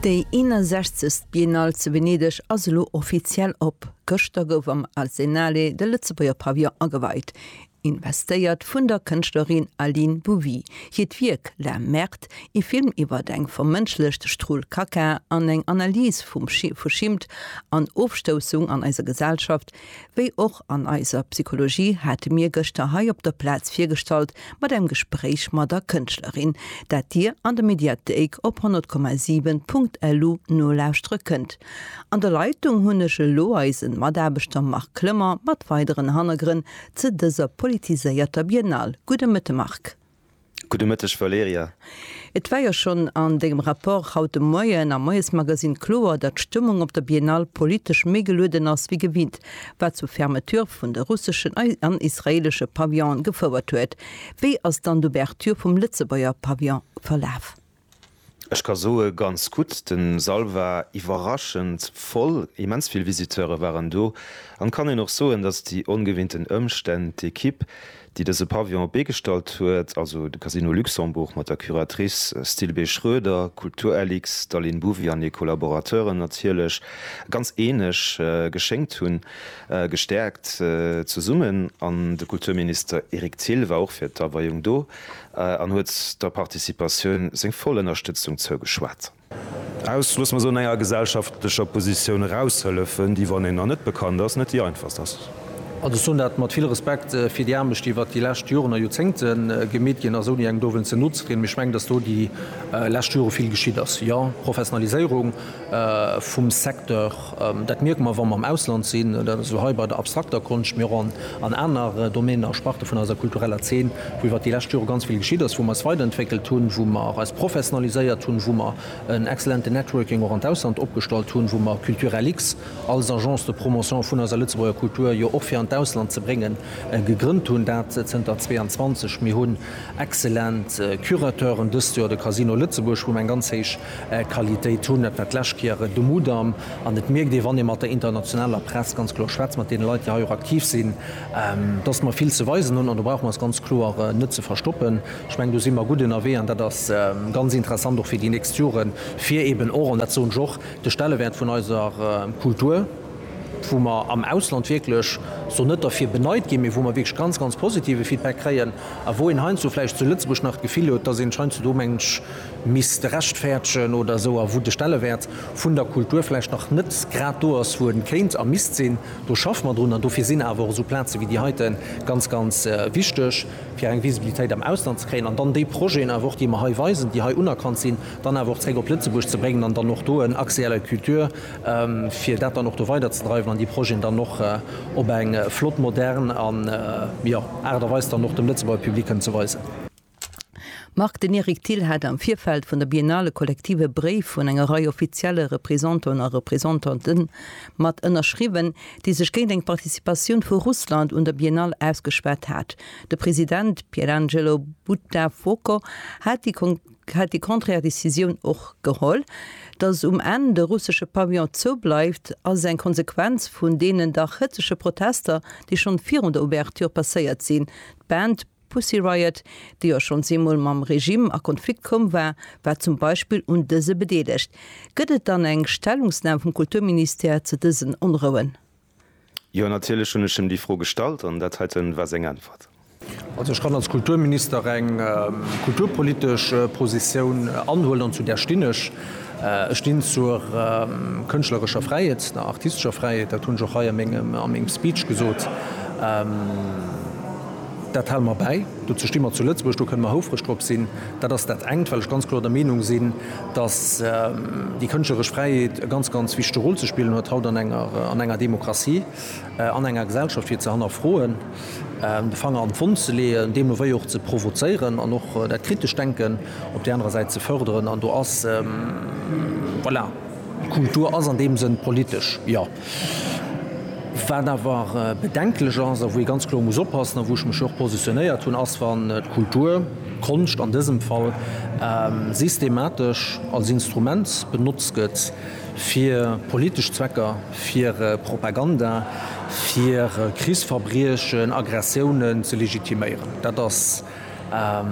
Déi 61. Biennale zu Venedeg ass elo offiziell op. Gëschter gouf am Arsenale de Lëtzebuerger Pavillon ageweit. Investéiert vun der Kënschtlerin Aline Bouvy. Hiert Wierk La Merde, ee Film iwwert eng vermënschlecht Strul Kaka an eng Analys vu Schimmt an Ofstoussung an eiser Gesellschaft, wéi och an eiser Psychologie, hate mir gëschter hei op der Plaz virgestallt mat engem Gespréich mat der Kënschtlerin, dat Dir an der Mediathéik op 100,7.lu nolauschtere kënnt. An der Leitung hunn ech elo eise Mataarbechter Marc Clement mat weideren Hannergrënn Ze dëser politiséierter Biennale. Gudde Mëtte Marc. Gudde Mëtteg Valerija. Et war jo schonn an dengem Rapport haut de Moien am Moiesmagasinn kloer, datt d'Stëmmung op der Biennale politesch méi gelueden ass wéi gewinnt, wat zur Fermeture vun de russeschen an israeelesche Pavillone gefouert huet. Wéi ass dann d'Ouverture vum Lëtzebuerger Pavillon verlaf? Ech ka soe ganz gutt, de Sall war iwwerraschend voll, immens vill Visiteure waren do an kann een och soen, datt déi ongewinnten Ëmstänn d'Ekipp, déi dëse Pavillon op d'Bee gestallt huet, also de Casino Luxembourg mat der Curatrice Stilbé Schroeder, Kulturlix, d'Aline Bouvy an hir Collaborateuren natierlech, ganz eeneg geschéngt hunn, gestäerkt zesummen. An de Kulturminister Eric Thill war och fir d'Aweiung do. An huet der Participatioun seng voll Ënnerstëtzung zougeschwat. Aus, loosse mer soen, enger gesellschaftlecher Positioun eraushëllefen, déi, wann een der net bekannt ass, net déi einfachst ass. An ech soen dat mat vill Respekt fir déi Aarbecht, déi iwwert déi lescht Joren a Joerzéngte gemeet ginn ass, ouni engem dowéinst ze no ze trieden. Mee ech mengen, datt do déi lescht Jore vill geschitt ass. Jo, Professionaliséierung vum Secteur Dat mierke mer, wa mer am Ausland sinn, dat ass elo hei bei der abstrakter Konscht, mee och an aner Domänen a Sparte vun eiser kultureller Zeen, wou iwwert déi lescht Jore ganz vill geschitt ass, wou mer eis weiderentwéckelt hunn, wou mer eis professionaliséiert hunn, wou mer en exzellenten Networking och an d'Ausland opgestallt hunn, wou mer Culturellix als Agence de promotion vun eiser Lëtzebuerger Kultur jo och fir an d'Ausland ze bréngen, gegrënnt hunn. Dat zënter 22. Mir hunn Excellent Curateuren dëst Joer, de Casino Lëtzebuerg, wou mer eng ganz héich Qualitéit hunn. Dat war d'lescht Kéier de Mudam an et mierkt ee, wann ee mat der internationaler Press ganz kloer schwätzt, mat deene Leit, déi heiou aktiv sinn, dass mer vill ze weisen hunn an do brauche mer eis ganz kloer net ze verstoppen. Ech mengen, do si mer gutt ënnerwee an dat ass ganz interessant och fir déi nächst Joren, fir eeben och, an dat soen ech och, de Stellewäert vun eiser Kultur, wou mer am Ausland wierklech esou net derfir beneit ginn, mee wou mer wierklech ganz, ganz positive Feedback kréien a wou een heiansdo vläicht zu Lëtzebuerg nach d'Gefill huet, dass een sech heiansdo do mengt misst rechtfäerdegen oder esou a wou de Stellewäert vun der Kultur vläicht nach net grad do ass, wou en kéint a misst sinn. Do schaffe mer drun an dofir sinn awer och esou Plaze wéi déi heiten ganz, ganz wichteg, fir eng Visibilitéit am Ausland ze kréien an dann déi Projeten awer och, déi mer hei weisen, déi hei unerkannt sinn, dann awer och zréck op Lëtzebuerg ze bréngen an dann och do en Accès à la culture, fir dat dann och do weiderzedreiwen an déi Projeten dann och op eng flott, modern Aart a Weis dann och dem Lëtzebuerger Public kënnen ze weisen. Marc, den Eric Thill hat am Virfeld vun der Biennale kollektiv e Bréif un eng Rei offizielle Représentanten a Représentantë mat ënnerschriwwen, déi sech géint eng Participatioun vu Russland un der Biennale ausgeschwat hat. De President Pierangelo Buttafuoco hat déi hätt déi contraire Décisioun och geholl. Datt um Enn de russesche Pavillon zou bleift, ass eng Konsequenz vun deenen dach hëtzege Protester, déi schonn virun der Ouverture passéiert sinn. D'Band Pussy Riot, déi jo schonns eemol mam Regime a Konflikt komm war, war zum Beispill un dëse bedeelegt. Gëtt et dann eng Stellungsnam vum Kulturministère zu dësen Onrouen? Jo, natierlech hunn ech em déi Fro gestallt an dat heiten war seng Äntwert. Also ech kann als Kulturminister eng kulturpolitesch Positioun anhuelen, an zu där stinn ech. Ech stinn zur kënschtlerescher Fräiheet, der artistescher Fräiheet. Dat hunn ech och hei a mengem Speech gesot. Dat hale mer bäi. Dozou sti mer zu Lëtzebuerg, do kënne mer houfreg drop sinn. Dat ass dat engt, well ech ganz kloer der Meenung sinn, dass déi kënschtleresch Fräiheet e ganz, ganz wichtege Rôle ze spillen huet haut an enger, an enger Demokratie, an enger Gesellschaft, fir ze hannerfroen, de Fanger an d'Wonn ze leeën, deemno wéi och ze provozéieren an och dat kritescht Denken op där anerer Säit ze förderen. An do ass, voilà, d'Kultur ass an deem Sënn politesch, jo. Wat awer bedenklech ass a wou ee ganz kloer muss oppassen a wou ech mech jo och positionéiert hunn, ass wann d'Kultur, d'Konscht an dësem Fall, systematesch als Instrument benotzt gëtt fir politesch Zwecker, fir Propaganda, fir Krichsverbriechen, Aggressiounen ze legitiméieren. Dat ass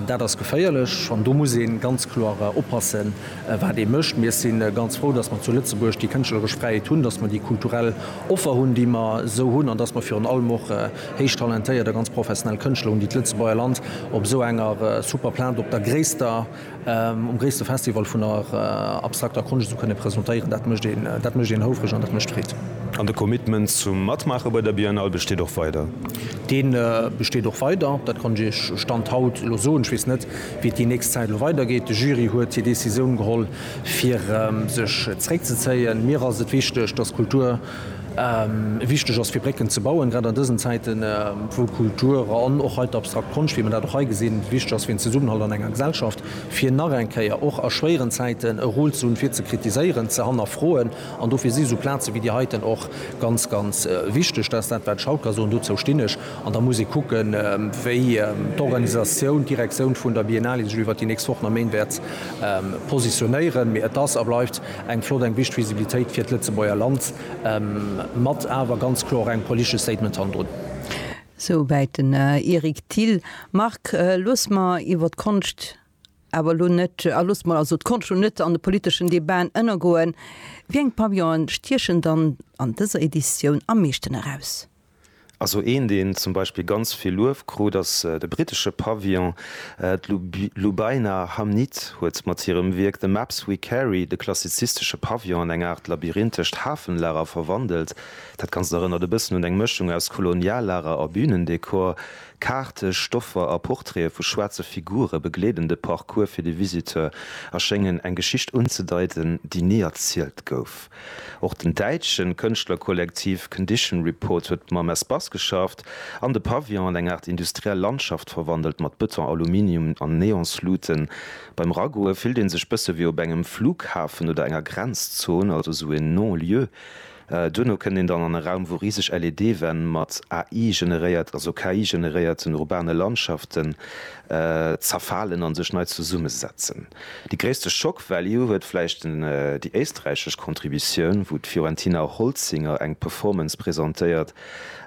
Dat ass geféierlech an do muss ee ganz kloer oppassen, wat ee mécht. Mir si ganz frou, datt mer zu Lëtzebuerg déi kënschtleresch Fräiheet hunn, datt mer déi kulturell Offer hunn, déi mer esou hunn an datt mer virun allem och héich talentéiert a ganz professionell Kënschtler hunn, déi d'Lëtzebuerger Land op esou enger super Plaz op der gréisster Um gréisste Festival vun der abstrakter Konscht ze kënne presentéieren, dat mécht een, dat mécht een houfreg an dat mécht Freed. An de Commitment zum Matmaache bei der Biennale besteet och weider? Dee besteet och weider, dat kann ech Iech Stand haut elo soen. Ech weess net, wéi et déi nächst Zäit elo weidergeet. De Jury huet hir Decisioun geholl, fir sech zréckzezéien. Mir ass et wichteg, dass d'Kultur Wichteg ass, fir Brécken ze bauen, grad an dësen Zäiten, wou Kultur an och hei d'abstrakt Konscht, wéi mer dat och hei gesinn, wichteg ass fir den Zesummenhalt an enger Gesellschaft, fir nach eng Kéier och a schwéieren Zäiten e Rôle ze hunn, fir ze kritiséieren, ze hannerfroen. An dofir si sou Plaze wéi déi heiten och ganz, ganz wichteg. Dat ass dat, wat ech haut ka soen. Dozou stinn ech. An da muss ee kucken, wéi d'Organisatioun, d'Direktioun vun der Biennale sech iwwert déi nächst Wochen a Méint wäert positionéieren. Mee et ass a bleift Eng flott, eng wichteg Visibilitéit fir d'Lëtzebuerger Land, mat awer ganz kloer och engem politesche Statement hannendrun. Souwäit den Eric Thill. Marc, looss mer iwwer d'Konscht awer elo net, a looss mer also d'Konscht elo net an de politeschen Debaten ënnergoen. Wéi eng Pavillonen stiechen dann an dëser Editioun am meeschten eraus? Also een deen zum Beispill ganz vill Luef krut ass de brittesche Pavillon. D'Lubaina Hamnit huet mat hirem Wierk The Maps We Carry de klassizistesche Pavillon an eng Aart labyrinthescht Hafenlager verwandelt. Dat Ganzt erënnert e bëssen un eng Mëschung aus Koloniallager a Bünendekor. Kaarte, Stoffer a Portraite vu schwaarze Figure begleeden de Parcours fir de Visiteur a schéngen eng Geschicht unzedeiten, déi ni erzielt gouf. Och den däitsche Kënschtlerkollektiv Condition Report huet mam Espace geschafft an de Pavillon an eng Aart industriell Landschaft verwandelt, mat Bëton, Aluminium an Neonsluten. Beim Ragoe fillt ee sech bësse wéi op engem Flughafen oder enger Grenzzon, also esou en Non-lieu. Duerno kënnt een dann an e Raum, wou riseg LED-Wänn mat AI-generéiert, also KI-generéierten urbane Landschaften zerfalen a sech nei zesummesetzen. Déi gréisste Shock Value huet vläicht déi éisträichesch Contributioun, wou d'Fiorentina Holzinger eng Performance presentéiert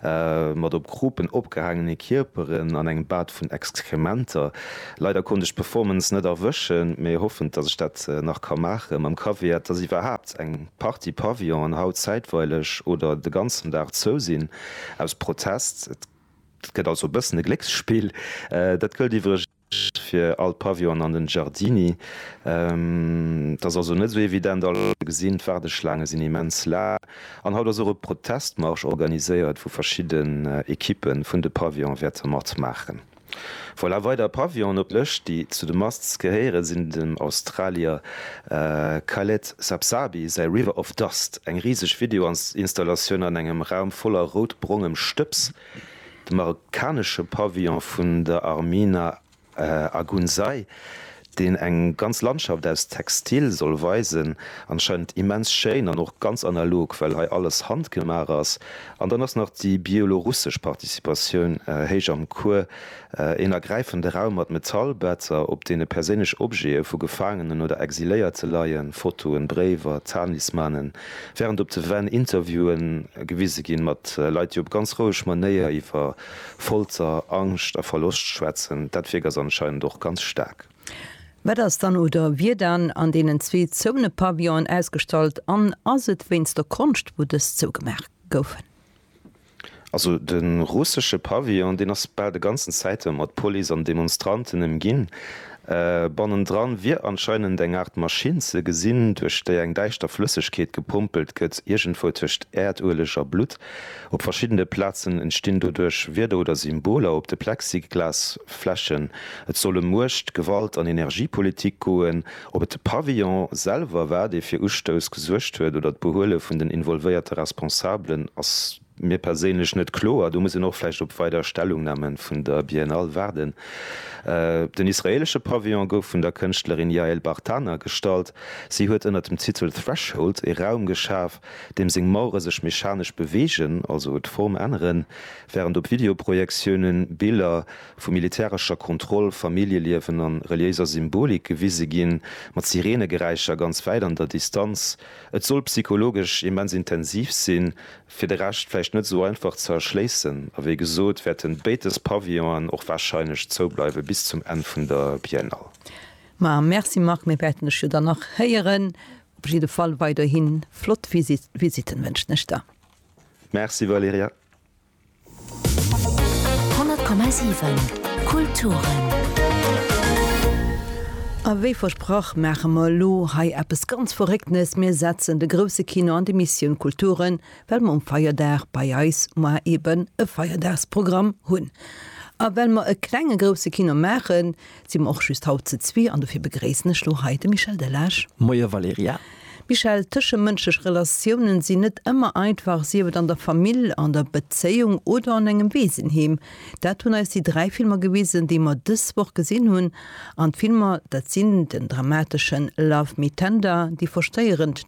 mat op Krupen opgehaangene Kierperen an engem Bad vun Exkrementer. Leider konnt ech d'Performance net erwëschen, mee hoffen, datt ech dat nach ka maachen. Mam Caveat, datt iwwerhaapt eng Partie Pavillonen haut zäitweileg oder de ganzen Dag zou sinn aus Protest. Et gëtt also e bëssen e Glécksspill. Dat gëllt iwwregens. fir all Pavillon an den Giardini. Et ass also net sou evident alles wat der gesinn. D'Waardeschlaange sinn immens laang an haut ass och e Protestmarsch organiséiert wou verschidden Equipe vun de Pavillone wäerte mat maachen. Voilà, weider Pavillonen op der Lëscht déi zu de Musts gehéieren sinn dem Australier Khaled Sapsabi säi River of Dust, eng riseg Video Installatioun an engem Raum voller rout-brongem Stëbs. De marokkanesche Pavillon vun der Armina Agounzay, deen eng ganz Landschaft aus Textil soll weisen, anscheinend immens schéin an och ganz analog, well hei alles handgemaach ass. An dann ass nach déi bielorussesch Participatioun héich am Cours. Een ergräifende Raum mat Metallbetzer, op deene perséinlech Objete vu Gefaangenen oder Exiléierte leien, Fotoen, Bréiwer, Talismanen, wärend op de Wänn Interviewe gewise ginn, mat Leit, déi op ganz roueg Manéier iwwer Folter, Angscht a Verloscht schwätzen. Dat Wierk ass anscheinend och ganz staark. Wat ass dann oder wier dann an deenen zwee zouene Pavillonen ausgestallt an ass et wéinst der Konscht, wou dës zougemaach goufen? Also de russesche Pavillon, deen ass bal de ganzen Zäite mat Police an Demonstranten ëmginn. Bannendran wier anscheinend eng Aart Maschinn ze gesinn, duerch déi eng däischter Flëssegkeet gepompelt gëtt, iergendwou tëscht Äerdueleg a Blutt. Op verschiddene Plazen entstinn doduerch Wierder oder Symboler op de Plexiglasflächen. Et soll ëm Muecht, Gewalt an Energiepolitik goen, Ob et de Pavillon selwer war, dee fir Ustouss gesuergt huet, oder d'Behuele vun den involvéierte Responsabelen, ass mir perséinlech net kloer. Do muss een och vläicht op weider Stellungname vun der Biennale waarden. Den israeelesche Pavillon gouf vun der Kënschtlerin Yael Bartana gestallt. Si huet ënner dem Titel Threshold ee Raum geschaf, deem seng Mauere sech mechanesch beweegen, also d'Form änneren, wärend op Videoprojektiounen Biller vu militärescher Kontroll, Familljeliewen a reliéiser Symbolik gewise ginn, mat Sireenegeräischer ganz wäit an der Distanz. Et soll psychologesch immens intensiv sinn, fir de Rescht vläicht net esou einfach ze erschléissen. A wéi gesot, wäerten béid dës Pavillonen och warscheinlech zoubleiwe bis zum Enn vun der Biennale. Ma merci Marc, mir wäerten dech jo dann nach héieren. Op jidde Fall weiderhi flott Visitten wënschen ech der. Merci Valerija. A wéi versprach maache mer elo hei eppes ganz Verrécktenes, Mir setzen de grousse Kino an d'Emissioun Kulturen, well mer um Feierdag bei eis mar eeben e Feierdagsprogramm hunn. A well mer e klenge grousse Kino maachen, Si mer och just haut ze zwee an dofir begréissen ech lo hei de Michel Delage. Moie Valerija. Michel, Tëschemënschlech Relatiounen sinn net ëmmer einfach, sief et an der Famill, an der Bezéiung oder an engem Weesenheem. Dat hunn eis déi dräi Filmer gewisen, déi mer dës Woch gesinn hunn. An d'Filmer, dat sinn den dramateschen Love Me Tender, déi verstéierend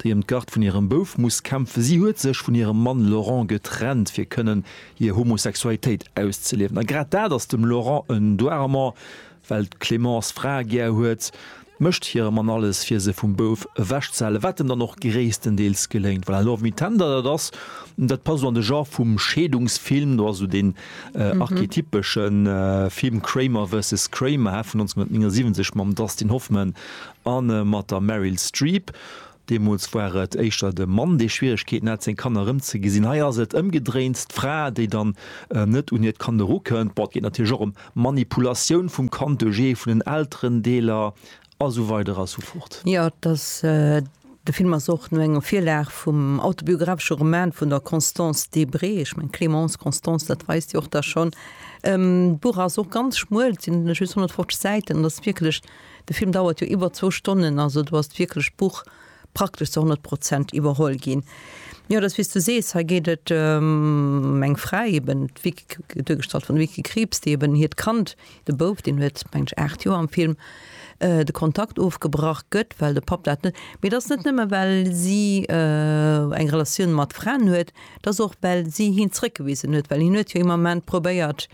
déi ëm d'Garde vun hirem Bouf muss kämpfen. Si huet sech vun hirem Mann Laurent getrennt, fir kënnen hir Homosexualitéit auszeliewen. A grad dat ass dem Laurent en Doirement, well d'Clémence Frae gär huet, mécht hire Mann alles, fir se vum Bouf ewechzehalen, wat em dann och gréisstendeels geléngt. Voilà, Love Me Tender, dat ass, dat passt esou an de Genre vum Scheedungsfilm, do ass esou deen archetypesche Film Kramer versus Kramer, vun 1979 mam Dustin Hoffman Anne mat der Meryl Streep. Deemools war et éischter de Mann, dee Schwieregkeeten hat, seng Kanner erëmzegesinn. Hei ass et ëmgedréint, d'Fra, déi dann net un hiert Kand erukënnt. Bon, et geet natierlech och ëm Manipulatioun vum Kand duerch ee vun den Elterendeeler a sou weider a sou fort. Jo, et ass, de Film ass och no enger Virlag vum autobiographesche Roman vun der Constance Debré. Ech mengen, Clémence, Constance, dat weist Dir och da schonn. D'Buch ass och ganz schmuel, et sinn just 150 Säiten, an et ass wierklech. De Film dauert jo iwwer zwou Stonnen, also do ass d'wierklecht Buch praktesch zu 100 Prozent iwwerholl ginn. Jo, et ass wéi s du sees, hei geet et ëm eng Fra eben, d'Vicky, duergestallt vun der Vicky Krieps, déi eben hiert Kand, de Bouf, deen huet meng ech 8 Joer am Film, de Kontakt ofgebrach gëtt, well de Papp dat net, mee et ass net nëmme well si eng Relatioun mat Fraen huet, et ass och well si hien zréckgewisen huet, well hien huet jo him am Ament probéiert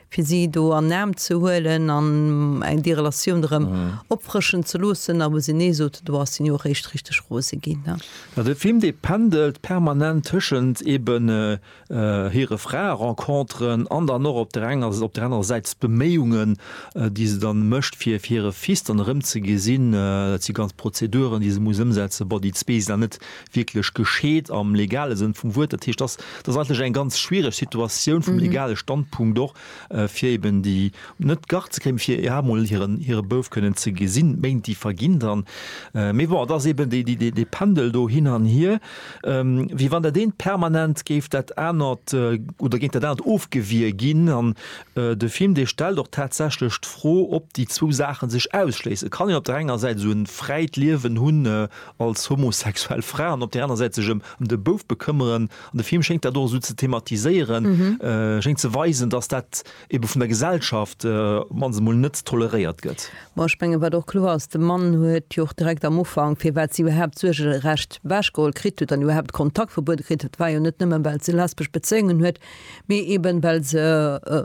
fir si do an den Aarm ze huelen an déi Relatioun erëm opfrëschen ze loossen, a wou se Nee soten, do ass hien jo och eréischt richteg rose ginn. Jo, de Film, dee pendelt permanent tëschent eben hire Frae-Renconteren an dann och op der enger, op där anerer Säit d'Beméiungen, déi se dann mécht, fir hire Fils dann erëm ze gesinn. Dat si ganz Prozeduren, déi se muss ëmsetzen. Bon, déi zwee sinn dann net wierklech gescheet am legale Sënn vum Wuert. Dat heescht, dass dass eigentlech eng ganz schwierig Situatioun vum legale Standpunkt och äh, fir eben déi net Garde ze kréien, fir ja mol hiren hire Bouf kënnen ze gesinn. Méint déi verginn dann. Äh, mee bon, et ass eben déi déi déi dee Pendel do hin an hier, ähm, wéi wann dat eent permanent géif dat anert äh, oder géint dat anert ofgewier ginn. An äh, de Film dee stellt och tatsächlech d'Fro, ob déi zwou Saache sech ausschléisse kann. Een op der enger Säit esou en fräit Liewen hunn, äh, als homosexuell Fra an op der aner Säit sech ëm ëm de Bouf bekëmmeren an de Film schéngt dat och esou ze thematiséieren, schéngt ze weisen, datt dat ebe vun der Gesellschaft op d'mannst emol net toleréiert gëtt. Bon, ech menge wat och kloer ass, de Mann huet jo och direkt am Ufank, firwat si iwwerhaapt d'Suergerecht ewechgeholl kritt huet an iwwerhaapt d'Kontaktverbuet kritt huet, war jo net nëmmen, well se lesbesch Bezéiungen huet, mee eben well se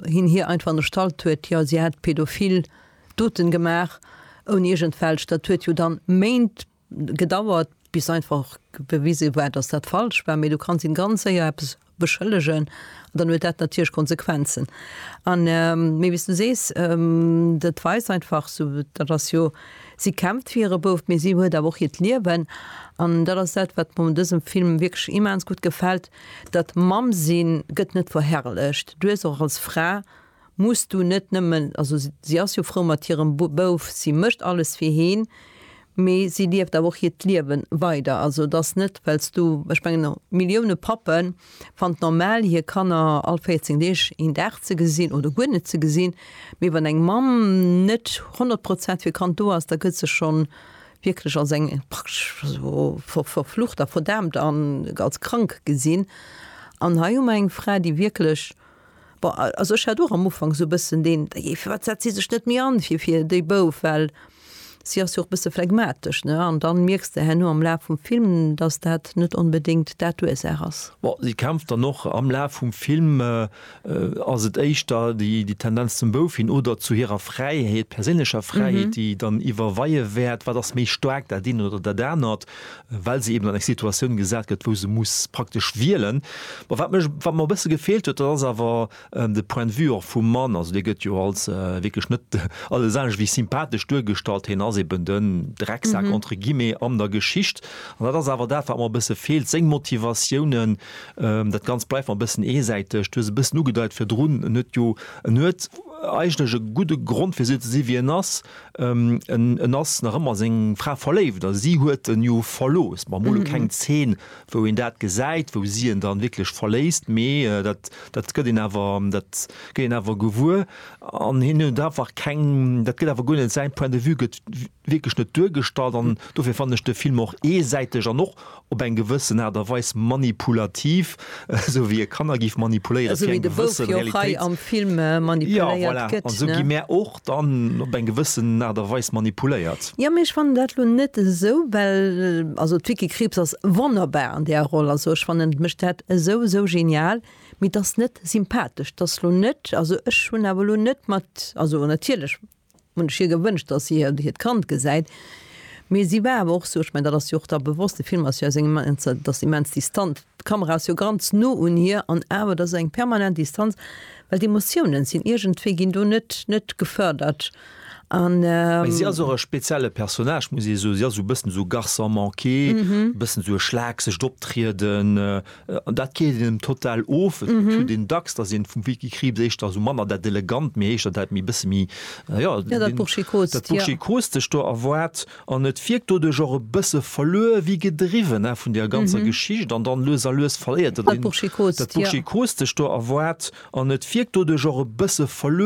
hien hir einfach ënnerstallt huet, jo si hätt pädophil. Doten gemaach ouni iergend welch, dat huet jo dann Méint gedauert bis einfach bewise war dass dat falsch war, mee du kanns een ganz séier eppes beschëllegen an dann huet dat natierlech Konsequenzen an mee wéis du sees dat weist einfach sou dat ass jo si kämpft fir hire Bouf mee si huet awer och hiert Liewen an dat ass dat wat mer un dësem Film wierklech immens gutt gefält, dat Mamm sinn gëtt net verherrlecht, du hues och als Fra muss du net nëmmen, also si ass jo frou mat hirem Bouf, si mécht alles fir heen, mee si lieft awer och hiert Liewe weider. Also et ass net, well s du, ech mengen Millioune Pappe fannen et normal hir Kanner all 14 Deeg een Dag ze gesinn oder guer net ze gesinn, mee wann eng Mamm net 100 Prozent fir Kand do ass, da gëtt se scho wierklech als eng praktesch verflucht a verdaamt an als krank gesinn. An hei hu mer eng Fra, déi wierklech Bon, also ech hat och am Ufank esou e bëssen deen, da jee, firwat setzt si sech net méi an fir, fir déi Bouf, well si ass jo och e bësse phlegmatesch, ne? An dann mierks de herno am Laf vum Film, dass dat net onbedéngt dat d'Ursaach ass. Bon, si kämpft dann och am Laf vum Film, ass et éischter déi, déi Tendenz zum Bouf hin oder zu hirer Fräiheet, perséinlecher Fräiheet, déi dann iwwerweie wäert, wat ass méi staark, dat eent oder dat anert? well se eben an eng Situatioun gesat gëtt, wou se muss praktesch wielen. Bon, wat mech, wat mer e bësse gefeelt huet, dat ass awer de Point de vue och vum Mann. Also dee gëtt jo als wierklech net alles anescht wéi sympathesch duergestallt. Hien ass eben den Drecksak, entre guillemets, an der Geschicht. An dat ass awer dat, wat mer e bësse feelt, seng Motivatiounen. Dat Ganzt bleift mer e bëssen eesäiteg. Du hues e bëssen ugedeit virdrun, en huet jo, en huet eigentlech e gudde Grond fir esou ze si wéi en ass. En ass nach ëmmer seng Fra verléift a si huet en jo verlooss. Mer hu lo keng Zeen, wou een dat gesäit, wou si en dann wierklech verléisst, mee dat, dat gëtt een awer, dat gëtt een awer gewuer. An hien huet einfach keng, dat gëtt awer guer net, säin Point de vue gëtt wierklech net duergestallt an dofir fannen ech de Film och eesäiteg an och op eng gewëssen Aart a Weis manipulativ, esou wéi e Kanner géif manipuléieren, fir eng gewësse Realitéits-, jo voilà, an esou gi mär och dann op eng gewëssen Aart a Weis manipuléiert. Jo, mee ech fannen dat elo net esou, well also d'Vicky Krieps ass wonnerbar an där Roll, also ech fannen, et mécht dat esou, esou genial, mee 't ass net sympathesch, 't ass elo net, also ech hunn awer elo net mat, also natierlech Hunn ech hir gewënscht, dass si hir, hiert Kand gesäit. Mee si war awer och esou, ech mengen, dat ass jo och da bewosst, de Film ass jo aus engem immens, ass immens distant, d'Kamera ass jo ganz no un hir an awer, dat ass eng permanent Distanz, well d'Emotiounen sinn iergendwéi, ginn do net, net gefërdert an. Mä si ass och e spezielle Personnage, muss ee soen. Si ass esou e bëssen esou Garçon manqué, e bëssen esou e schlaaksegt Optrieden, An dat geet engem total of. Et huet een dacks, datt een vum Vicky Krieps éischter esou manner dat Elegant, méi éischter dat méi bësse méi, jo, dat Burschikostescht do erwaart. An et wierkt doduerch och e bësse verluer wéi gedriwwen vun där ganzer Geschicht. An dann lues a lues verléiert dat Burschikostescht do erwaart. An et wierkt doduerch och e bësse verluer.